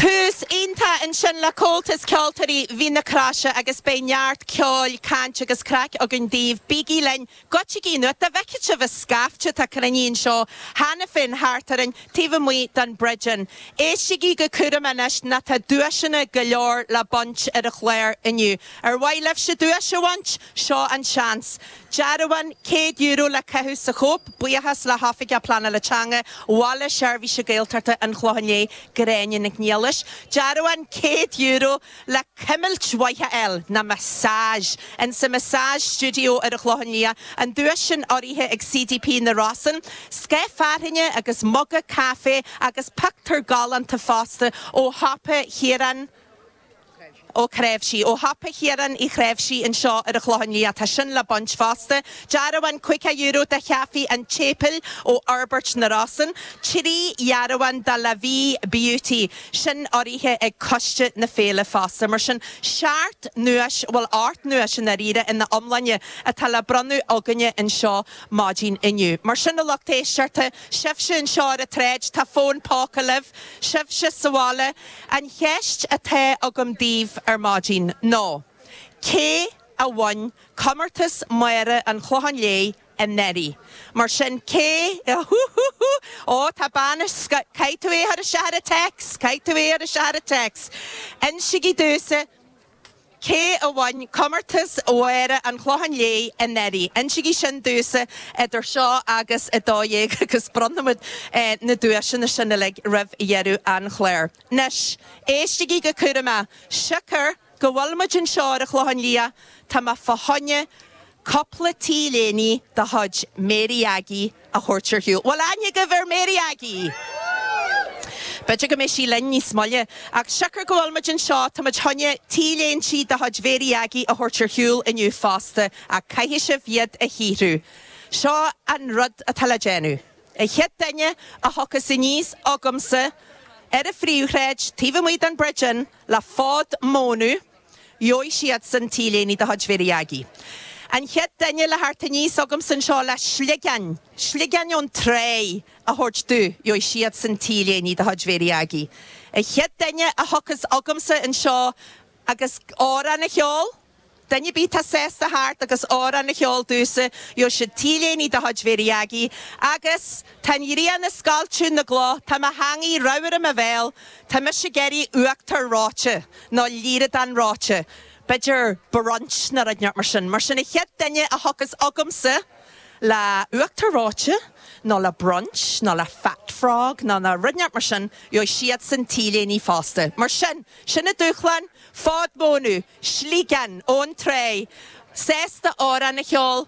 Tús iontach ansin le Comhaltas Ceoltóirí Mhín na Croise agus beidh neart ceoil, caint agus craic againn daoibh, bígí linn, goitsigí anuas, dá bhfeicfeadh sibh an scaifte atá ag cruinniú anseo cheana féin thart orainn, taobh amuigh den Bridge Inn. Éistigí go cúramach anois nó tá duaiseanna go leor le baint ar an chlár inniu. Ar mhaith libhse duais a bhaint? Seo an seans. Dearbhán céad euro le caitheamh sa chóip, buíochas le hOifigeach Pleanála Teanga Bhaile Seirbhíse Gaeltachta an Chlocháin Léith, Gráinne Nic Niallais. Dearbhán céad euro le cuimilt mhaith a fháil, nó massage, in sa Massage Studio ar an Chlochán Liath, an duais sin urraithe ag CDP na Rosann. Scáth fearthainne agus muga caife agus pictiúr galánta fosta ó shiopa Chiaráin. Ó Creabhsí. Ó shiopa Chiaráin Uí Chreabhsí anseo ar an Chlochán Liath. Tá sin le baint fosta. Dearbhán caoga euro do Chaifé an tSéipéil ó Fhorbairt na Rosann. Trí dhearbhán do La Vie Beauty. Sin urraithe ag coiste na féile fosta. Mar sin, seacht nduais, bhuel, ocht nduais i ndáiríre, ina iomláine, atá le bronnadh againne anseo maidin inniu. Mar sin, a lucht éisteachta, sibhse anseo ar an tsráid, tá fóin póca libh, sibhse sa bhaile, An cheist atá agam daoibh ar maidin ná, cé a bhain comórtas Máire an Chlocháin Léith anuraidh? Mar sin, cé, hú hú hú, ó tá bean anseo, caithfidh tú é a chur isteach ar an text, caithfidh tú é a chur isteach ar an text! Insigí domhsa Cé a bhain comórtas Mháire an Chlocháin Léith anuraidh? Insigí sin domhsa idir seo agus a dó dhéag agus bronnfaimid na duaiseanna sin uilig roimh dheireadh an chláir. Anois, éistigí go cúramach, siocair go bhfuil muid anseo ar an Chlochán Liath, tá mé fá choinne Cupla t-léine de chuid Mary Aggie a thabhairt ar shiúl. Bhfuil aithne agaibh ar Mary Aggie! B'fhéidir go mbeidh sí linn níos moille. Ach siocair go bhfuil muid anseo, tá muid choinne t-léintí de chuid Mhary Aggie a thabhairt ar shiúl inniu fosta, ach caithfidh sibh iad a shaothrú. Seo an rud atá le déanamh. An chéad duine a thiocfas aníos chugamsa ar an phríomhshráid, taobh amuigh den Bridge Inn, le fód mónadh, Gheobhaidh siadsan t-léine de chuid Mhary Aggie. An chéad duine le theacht aníos chugamsa anseo le sligeáin, sligeáin ón tráigh, a thabhairt domh, gheobhaidh siadsan t-léine de chuid Mhary Aggie. An chéad duine a thiocfas chugamsa anseo agus amhrán a cheol, duine ar bith atá sásta a theacht agus amhrán a cheol domhsa, gheobhaidh siad t-léine de chuid Mhary Aggie agus. Tá an ghrian ag scoilteadh na gcloch, tá mo theangaidh ramhar i mo bhéal, tá mise ag iarraidh uachtar reoite, nó líreadáin reoite, b'fhéidir brunch nó rud ineacht mar sin, mar sin an chéad duine a thiocfas chugamsa le uachtar reoite nó le brunch nó le fat frog nó le rud ineacht mar sin, gheobhaidh siadsan t-léine fosta. Mar sin, sin na dúshláin, fód mónadh, sliogán ón tráigh, véarsa amhráin a cheol,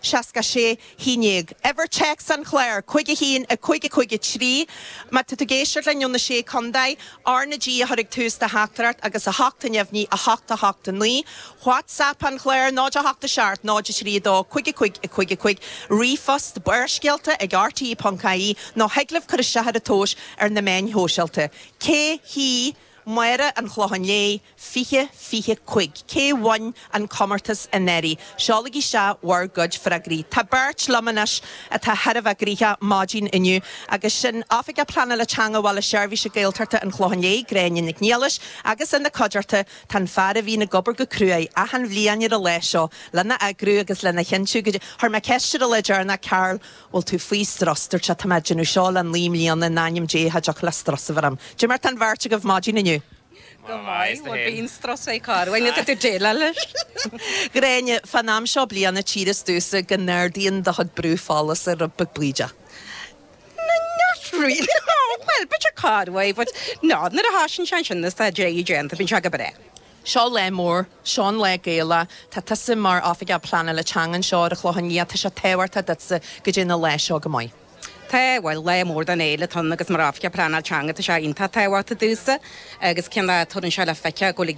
66, a naoi, uimhir téacs an chláir, cúig a haon, a cúig a cúig a trí, má tá tú ag éisteacht linn ó na Sé Contae, R na G a chur ag tús do theachtaireacht agus a hocht i ndiaidh a naoi, a hocht, a hocht a naoi, WhatsApp an chláir, 0 a hocht a seacht, 0 a trí a dó, cúig a cúig, a cúig a cúig, ríomhphost, Barrscéalta ag rte ponc ie nó thig libh cur isteach ar an tomhas ar na meáin shóisialta. Cé hí Máire an Chlócháin Léith? 20, 25. Cé bhain an comórtas i nDoire? Seolaigí isteach bhur gcuid freagraí. Tá beirt liom anois atá thar a bheith gnoithe maidin inniu agus sin Oifigeach Pleanála Teanga Bhaile Seirbhíse Gaeltachta an Chlócháin Léith, Gráinne Nic Niallais agus ina cuideachta tá an fear a bhíonn ag obair go cruaidh achan bhliain ar an lá seo lena eagrú agus lena chinntiú go Chuir mé ceist ar an lá deireanach Carl bhfuil tú faoi strus? Dúirt tú tá mé ag déanamh seo le naoi mbliana in ainm Dé cha dtiocfadh le strus a bheith orm. Caidé mar atá an bheirt agaibh maidin inniu. Go maith, bhuel bíonn strus ag cách orainn agus tú ag déileáil leis! Gráinne, fán am seo bliana tchíthear domhsa go n-ardaíonn do chuid brú fola giota beag bídeach. No, not really, bhuel b'fhéidir corruair but no, nuair a thosaíonn sé ansin is tá deireadh déanta, bíonn sé go breá. Seo lá mór, seo an lá Gaelach, tá tusa mar Oifigeach Pleanála Teanga anseo ar an Chlochán Liath, tá sé tábhachtach duitse go dtéann an lá seo go maith. Tá, bhuel, lá mór don fhéile atá ann agus mar oifigeach pleanáil teanga tá sé iontach tábhachtach domhsa agus tchíonn tú rudaí ann seo le feiceáil ag dul i